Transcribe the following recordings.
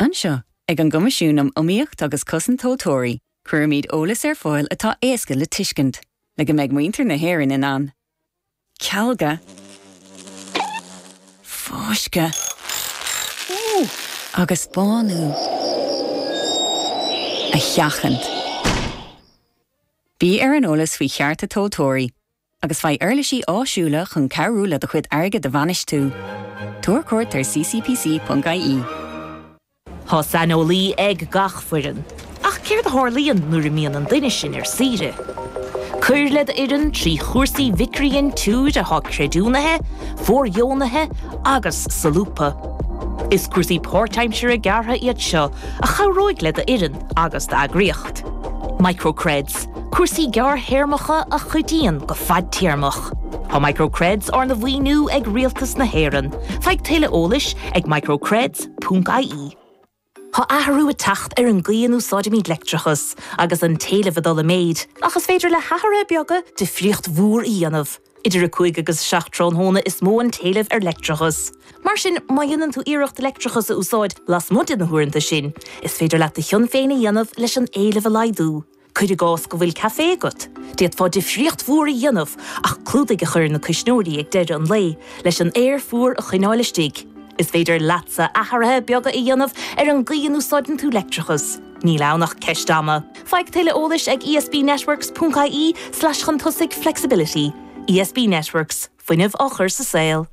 Anseo, ag an gCoimisiún um Iomaíocht agus Cosaint Tomhaltóirí, cuirimid eolas ar fáil atá éasca le tuiscint, le go mbeidh muintir na hÉireann in ann cealga, fáisceadh agus bánú a sheachaint. Bí ar an eolas faoi chearta tomhaltóirí. agus faigh uirlisí áisiúla chun cabhrú le do chuid airgid a bhainistiú. Tabhair cuairt ar ccpc.ie. Tá saineolaí ag gach foireann. Ach céard a tharlaíonn nuair a bhíonn an duine sin ar saoire? Cuir le do fhoireann trí chúrsaí micridhintiúr atá creidiúnaithe, fóirdheonaithe agus solúbtha. Is cúrsaí páirtaimsire gearra iad seo a chabhróidh le do fhoireann agus d'eagraíocht. Microcreds. Cúrsaí gearrthéarmacha a chuidíonn go fadtéarmach. Tá MicroCreds arna mhaoiniú ag Rialtas na hÉireann. Faigh tuilleadh eolais ag microcreds.ie. Tá athrú ag teacht ar an gcaoi a n-úsáidimid leictreachas, agus an t-éileamh ag dul i méid, ach is féidir le hathruithe beaga difríocht mhór a dhéanamh. Idir 5 agus 7 tráthnóna is mó an t-éileamh ar leictreachas. Mar sin, má dhéanann tú iarracht leictreachas a úsáid lasmuigh de na huaireanta sin, is féidir leat do chion féin a dhéanamh leis an éileamh a laghdú. Cuir i gcás go bhfuil caifé agat, d'fhéadfá difríocht mhór a dhéanamh ach clúdaigh a chur ar na cuisneoirí ag deireadh an lae leis an aer fuar a choinneáil istigh. Is féidir leatsa athruithe beaga a dhéanamh ar an gcaoi a n-úsáideann tú leictreachas. Níl ann ach ceist ama. Faigh tuilleadh eolais ag esbnetworks.ie/chun tosaigh flexibility. ESB Networks. fuinneamh á chur sa saol.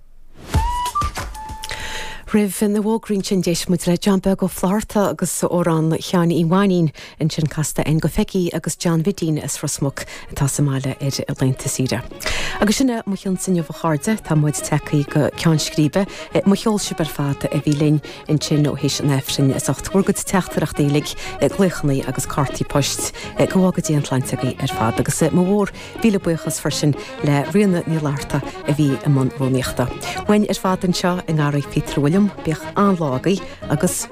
Roimh na bhfógraí sin d'éist muid le John Beag Ó Flatharta agus amhrán Sheáin Uí Mhainnín, ansin casadh An Go Fáilí agus John Mhidín as Ros Muc atá sa mbaile ar laethanta saoire. Agus sin é mo chion's inniu a chairde, tá muid tagthaí go ceann scríbe. Mo cheol sibh ar fad a bhí linn ansin ó th'éis an Aifrinn as ucht bhur gcuid teachtaireachtaí uilig, glaochanna agus cártaí poist. Go bhfága Dia an tsláinte agaibh ar fad agus mo mhór. Míle buíochas freisin le Ríona Ní Fhlatharta a bhí i mbun rúnaíochta. Uainn ar fad anseo i nGarraí Phíotair Uilliam, bíodh an-lá agaibh agus.